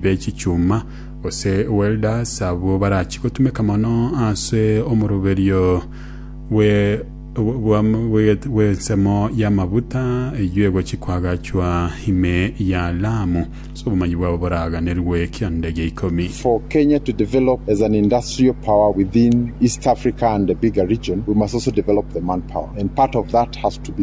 be chichuma, gose welders, abwo barachi gotumeka mono ase omoroberio bwe bwa bw'ensemo y'amaguta eyio egochi kwagachwa ime ya Lamu, ase obomanyi bwabo boraganerwe ekianda gia ikomi. For Kenya to develop as an industrial power within East Africa and the bigger region, we must also develop the manpower. And part of that has to be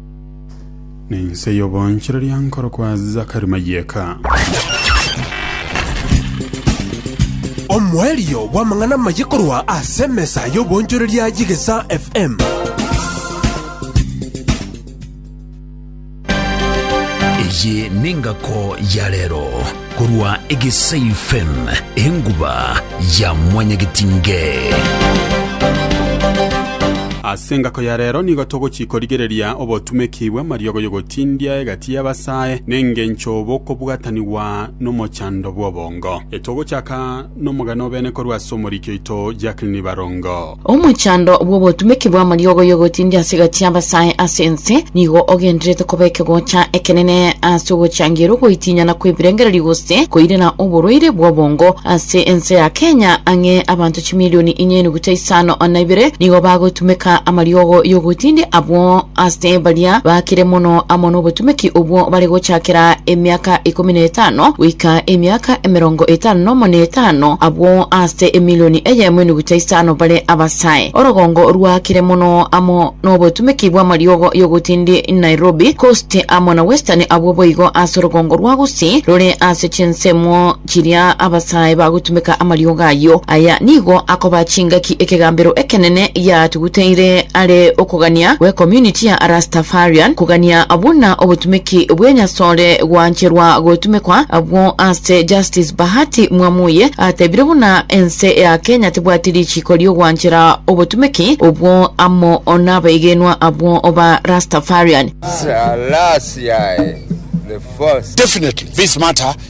Ninse y'obonchereria nkorokwa Zakari Mayeka. Omoerio bw'amang'ana amaye korwa ase emesa y'obonchoreria y'Egesaa FM. Eye nengako ya rero. Korwa egesaifen enguba ya mwanyagetinge. Ase engako ya rero nigo togochia korigereria obotumeki bw'amariogo y'ogotindia egati y'abasae, nengencho bokobwatanigwa nomochando bw'obongo. Etogochaka Nomogani obene korwa ase omoriki oito Jacqueline Barongo. Omochando bw'obotumeki bw'amariogo y'ogotindia ase egati y'abasae ase ense nigo ogenderete koba ekegocha ekenene ase ogochangiera ogoitinyana kw'ebirengererio gose koirera oborwaire bw'obongo ase ense ya Kenya ang'e abanto chimilioni inye Ase isano na ibere nigo bagotumeka amariogo y'ogotindia abwo ase baria bakire mono amo n'obotumeki obwo bare gochakera emiaka ikomi na etano goika emiaka emerongo etano nomo na etano, abwo ase emilioni eyemo enuguta isano bare abasae. Orogongo rwakire mono amo n'obotumeki bw'amariogo y'ogotindia Nairobi Coast amo na Western abwo boigo ase orogongo rwa gusii rore ase chinsemo Chiria abasae bagotumeka amariogo ayio, aya nigo akoba chingaki ekegambero ekenene giatuguteire are okogania gw'Ecommunity ya Rastafarian, kogania buna obotumeki bw'enyasore gwancherwa gotumekwa abwo ase Justice Bahati Mwamuye atebire buna ense ya Kenya tebwati richiiko ri'ogwanchera obotumeki obwo amo n'abaigenwa abwo ba Rastafarian. Selassie I the First. Definitely, this matter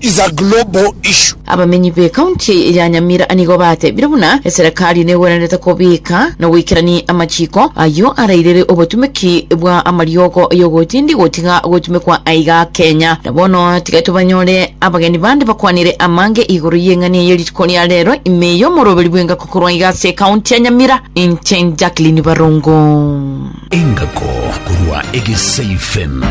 is a global issue. Abamenyi be county ya Nyamira nigo batebire buna eserekari negwenerete kobika na goikerania amachiko ayio arairire obotumeki bwa amariogo yogotindi gotiga gotumekwa aiga Kenya. Na bono tiga tobanyore abageni bande bakwanire amange igoro y'eng'ani eye rituko ria rero ime y'omoroberi bw'engako korwa aiga ase county ya Nyamira inche Jacqueline Barongo. Engako korwa Egesaifem.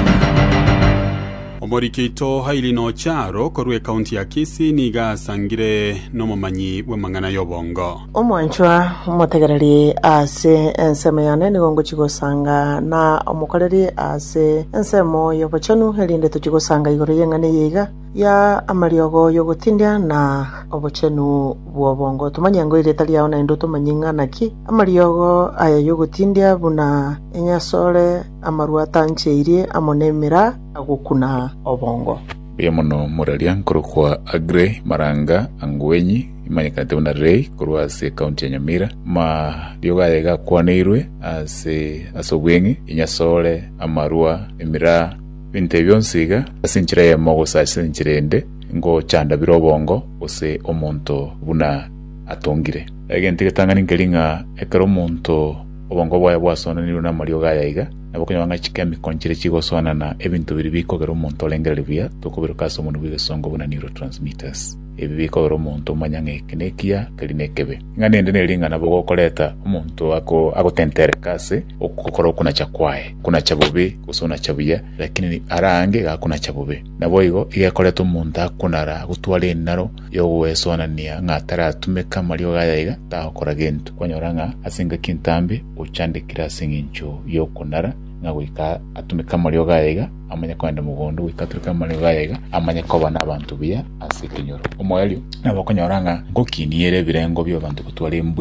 Omoriki oito Hailey Nocharo korwa ekaunti ya Kisii nigo asangire nomomanyi bw'amang'ana y'obongo. Omwanchwa, omotegereri ase ensemo yane nigo ngochia gosanga, na omokoreri ase ensemo y'obochenu, erinde tochie gosanga igoro y'eng'ana eye iga ya amariogo y'ogotindia na obochenu bw'obongo. Tomanye ng'a erieta riao naende otomanye ng'a naki amariogo aya y'ogotindia buna enyasore, Amaru atancheirie amo nemeraa agokuna obongo. Mbuya mono moraria nkorokwa Aggrey Maranga Angwenyi imanyekanete buna Rei korwa ase ekaunti ya Nyamira. Amariogo aye iga akwaneirwe ase ase obweng'e, enyasore, amarwa, emiraa, ebinto ebi bionsi iga ase enchera eyemo gose ase enchera eyende ngochanda bire obongo gose omonto buna atongire. Egento egetang'ani nkeria ng'a ekero omonto Obongo bwaye bwasoonanirwe namariogo aya aiga, nabo konya bang'aini chike emiko nchire chigosoonana ebinto biria bikogera omonto orengereria buya, tokobiroka ase omonwa bw'egesongo buna neurotransmitters. Ebi bikogera omonto omanye ng'a eke nekiya, keri nekebe. Ing'ana ende neri ng'a nabo gokoreta omonto agotentereka ase ogokora okunacha kwaye, okunacha bobe gose onacha buya, lakini ara ange iga akonacha bobe. Naboigo iga ekoreta omonto akonara, agotwara enaro, y'ogwesonania ng'a taratumeke amariogo aye aiga, tagokora gento. Kwanyora ng'a ase engaki entambe ochandekire ase engencho y'okonara ng'a goika atumeke amariogo aye aiga, amanye kogenda mogondo, goika atureke amariogo aye aiga, amanye koba n'abanto buya ase ekenyoro. Omoerio nabo okonyora ng'a ngokinie ere ebirengo bi'abanto gotwara embwiri.